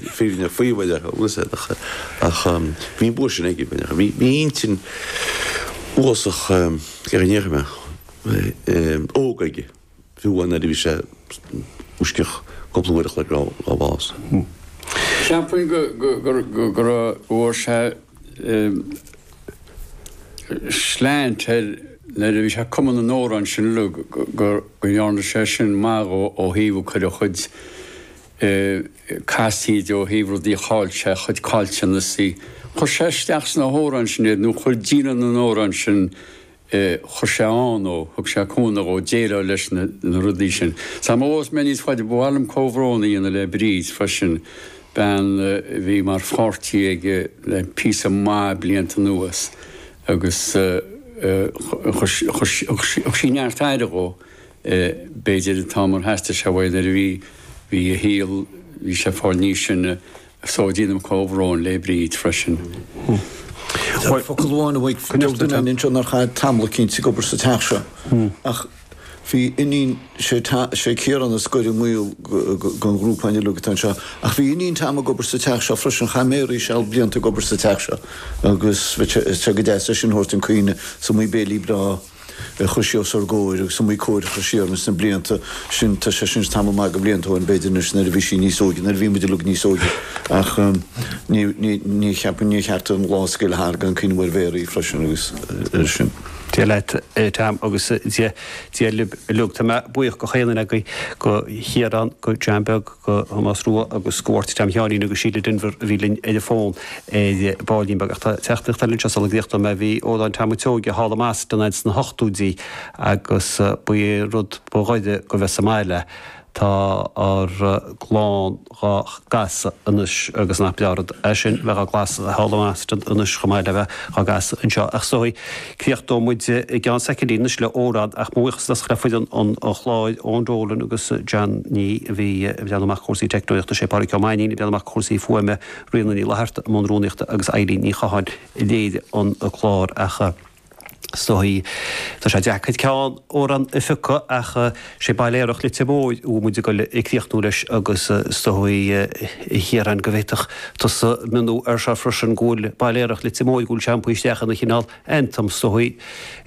fírinne faobhair a uasail ach bhí an bua sin aige. Bhí intinn uafásach ar an éirime óg aige, fiú nuair a bhí sé i bhfoisceacht cúpla uair a chloig ón bhás. Cheapfainn go bhfuair sé slant air nuair a bhí sé ag cumadh na n-amhrán sin uilig, go ndearna sé sin maith dhó ó thaobh cur a chuid casaoid ó thaobh rudaí a chaill sé, a chuid caillteanasaí. Chuir sé isteach sna hamhráin sin iad, nó chuir déanamh na n-amhrán sin, chuir sé ann ó, thug sé cúnamh dhó déileáil leis na rudaí sin. Sul má ghabhfas mé níos faide, ba mhaith liom comhbhrón a dhéanamh le Bríd freisin, bean a bhí mar pháirtí aige le píosa maith blianta anuas agus thug sí neart aire dhó. b'fhéidir, an t-am ar theastaigh sé uaidh nuair a bhí, bhí a shaol, bhí sé ag fáil níos sine so déanaim comhbhrón le Bríd freisin. Focal amháin uaidh, deir duine linn anseo nár chaith tamall eicínt ag obair sa teach seo ach bhí iníon, sé Ciarán is gaire i ngaol gon ghrúpa uilig atá anseo, ach bhí iníon Tom ag obair sa teach seo freisin, chaith Mary seal blianta ag obair sa teach seo agus bheadh sé go deas é sin thabhairt chun cuimhne, 's iomaí béile breá. a chuir sí os ár gcomhair agus muid ag comhrá siar sna blianta sin, tá sé sin tamall maith de bhlianta ó shin, b'fhéidir, anois, nuair a bhí sí níos óige, nuair a bhí muid uilig níos óige, ach ní cheapaim, níor cheart an lá a scaoileadh thart gan cuimhneamh ar Mhary freisin agus ar sin. Dia leat, a Tom, agus Dia libh uilig. Tá mé buíoch go chaon duine agaibh, go Chiarán, go John Beag, go Tomás Rua agus go Mháirtín Tom Sheáinín agus Síle Denvir a bhí linn ar an bhfón. ar ball beag, ach tá téacs anois anseo sula gcríochnóidh mé. Bhí amhráin Tom an tSeoighe thall i mBoston sna hochtóidí agus ba é rud ba ghaire go bheith sa mbaile. Tá ár gclann dhá gcasadh anois agus nach breá rud é sin, bheith dhá gcasadh thall i mBoston anois chomh maith le bheith dhá gcasadh anseo. Ach is dóigh, críochnóidh muid i gceann soicindí anois le amhrán, ach mo bhuíochas freisin le foireann an chláir, Eoin Dolan agus John Nee a bhí ag breathnú amach cúrsaí teicneolaíochta, Sé Pádraic Ó Mainnín ag breathnú amach cúrsaí fuaime, Ríona Ní Fhlatharta i mbun rúnaíochta agus Eilín Ní Chatháin a léirigh an clár ach is dóigh tá sé deacair ceann amhrán a phiocadh ach sé Baile Aerach Leitir Móir a bhfuil muid ag críochnú leis agus is dóigh a Chiaráin go bhféadfadh tusa mionnú ar seo freisin go bhfuil Baile Aerach Leitir Móir go bhfuil sé iompaithe isteach ina chineál anthem is dóigh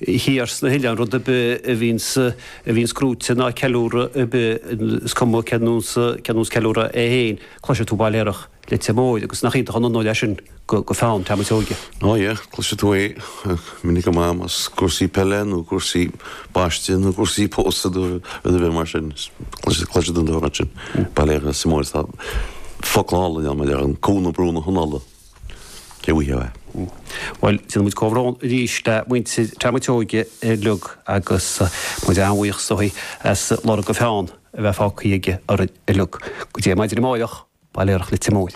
thiar sna hoileáin rud ar bith a bhíonns a bhíonns socraithe ná ceiliúradh ar bith is cuma cén nós cén nós ceiliúradh é féin. Cloisfidh tú Baile Aerach Leitir Móir, agus nach iontach an onóir é sin do pheann Tom a' tSeoige. Ó yea, cloisfidh tú é minic go maith más cúrsaí peile nó cúrsaí baiste nó cúrsaí pósadh nó rud ar bith mar sin. Cloisfidh tú an t-amhrán sin, Baile Aerach Leitir Móir, tá focla áille ann, mar a deir an Cú na Brú na hAnnála. There we have it. Bhuel, déanfaidh muid comhbhrón arís le muintir Tom a' tSeoige uilig agus muid an-bhuíoch dó as lorg a pheann a bheith fágtha aige orainn uilig. Go dtí maidin amárach, Baile Aerach Leitir Móir.